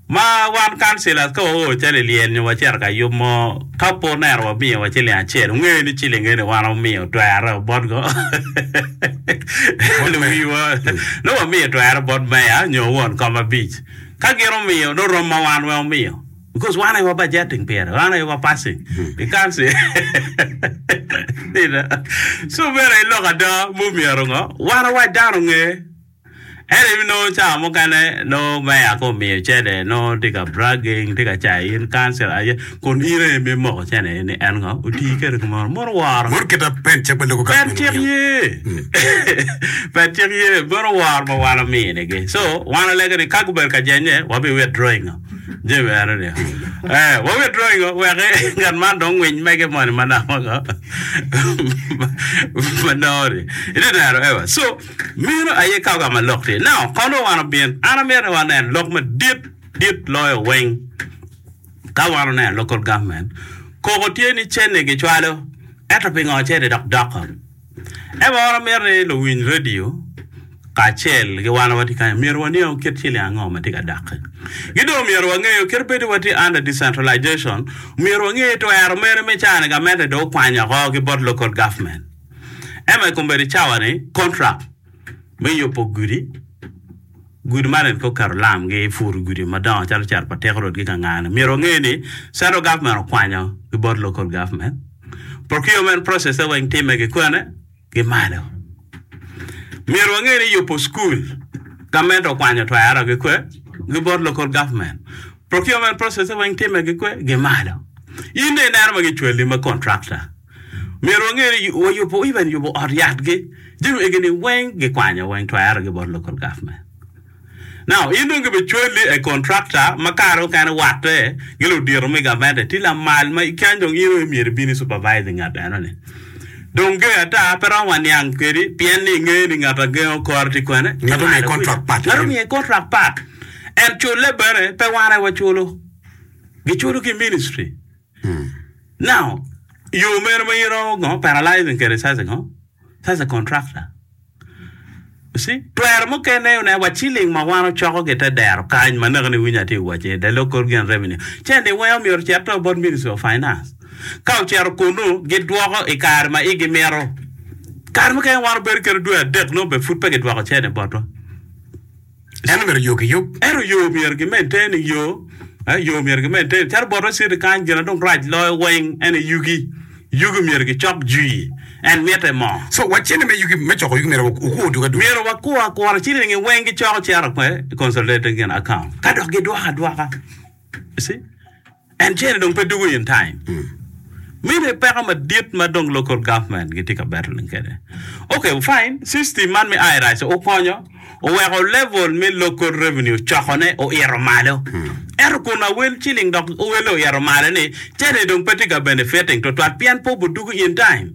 Ma wan kancilas ka waor cal i lyel nyo wacito ka yub mo, ka pe oneno wamiyowa ciling acel, wungeyo ni ciling eni wan wamiyo twerre bot ngo? Luwiwa, nongo wamiyo twerre bot meya nyo won kom abic. Ka gin omiyo, nongo rom ma wan weng omiyo. Because wan aye wa budgeting pire, wan aye wa passing i council. Ina, so meno aye lok ada ma omyero ngo? Wan awac dano nge. Ento in nongo cawa mukene nongo meya ko miyo cene nongo tye ka bragging tye ka cayo in council aye kun in aye me moko cene ni en ngo oti kede kumaro mono woro. Mono kita pen cik me logo Pen cik ye. Pen cik ye mono woro ma wan omini gi. So wan alege ni ka gubedo ka jenye wabi withdrawing ngo jami eno ni. Eh wa withdrawing ngo wek ngat man dong winy mege moni manok ngo. Manoni. Iti neno ewa. So Meno aye ka ogamo lok ni, Nao, kon wa wan obin, an amito ni wanen lok madit dit loyo weng. Ka wan oneno local government koko tye ni cene gicwalo, ento pingo cene dok doko? Ento wan amito ni luwiny radio kacel ki wan watye kany myero waniang kit ciling ango matye ka dokke. Ki dong myero wangeyo kit bedo ni watye under decentralization, myero wange twero mene me cani gamente dong okwanyo oko ki bot local government. Ento i kombeddi cawa-ni, kontrak me yubo gudi, gudi man en kong keto lam gi puru gudi madongo calo cito pa teko rwot gi ka ngane. Myero onge ni central government okwanyo ki bot local government, procurement process-e weng timme ki kwene? Ki malo. Myero wange ni yubo school, government okwanyo twero ki kwe? Ki bot local government. Procurement process-e weng timme ki kwe? Ki malo. In dong ineno ma gicwali ma contractor. Myero wange ni wayubo even yubo ot yatgi, jami egini weng gikwanyo weng twere gi bot local government. Now in dong gibe cwali a contractor ma kare mukene watte gi ludito me gavente tye lamal ma kany dong in aye myero ibin i supervise ngat eno ni. Dong ger ata pe romo waniang kwedi pien ni inge ni ngat a gengo kore tye kwene? Ngat omiye contract part. Ngat omiye contract part and cule bene pe wan aye waculo. Giculo ki ministry. Now, yo meno ma in iromo ngo, paralyzing kede sasa ngo, sasa contractor. You see, twero mukene aye oneno wa ciling ma wan ocoko ki te dero kany ma naka ni winyo atye wace i the local gen revenue, ce ni weo myero ocit to bot ministry of finance. Ka ocito kunu, gidwoko i kare ma igi mito. Kare mukene wan obedo kede dwe adek nongo be pud pe gidwoko cene botwa. En omyero yo ki yub. Ento yo omyero gimedde ni yo, eh, yo omyero gimedde ni. Calo botwa citi kany, gin ma dong rac loyo weng en aye yugi. Yugi omyero gicok jwii. En mitte mo. So, wacce ni me yugi, me coko yugi myero wa- wukwo oduke aduka. Myero wakwo akura cilingi weng gicoko cito kwe i consolidated gin account. Ka dok gidwoko adwoka. You see? En cene dong pe dugo in time. Mine peko madit ma dong local government gitye ka battling kwede. Ok, fine, system man me IRS okonyo, oweko level me local revenue cokone oito malo. Ento kun awel ciling dok owele oito malo-ni, cene dong pe tye ka benefiting tutwal pien pe obudugo in time.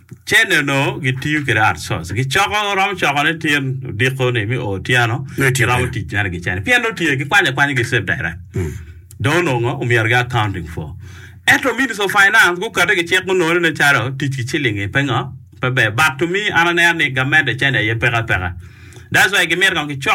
Cene onongo gitiyo kwede outsource. Gicoko, romo coko ne tyen odiko ni mi o otyeno. Nongo itye Giromo kwede. tic mere gicene. Pien nongo tye gikwanyo akwanya gi Save Direct. Dong onongo omyero gi accounting for. Ento Ministry of Finance gukate ki cik gunongo ni nen calo tic ki ciling-ngi pe ngo, pe ber. But to me an aneno ni gamente cene aye peke apeka. That's why gimito kong gicok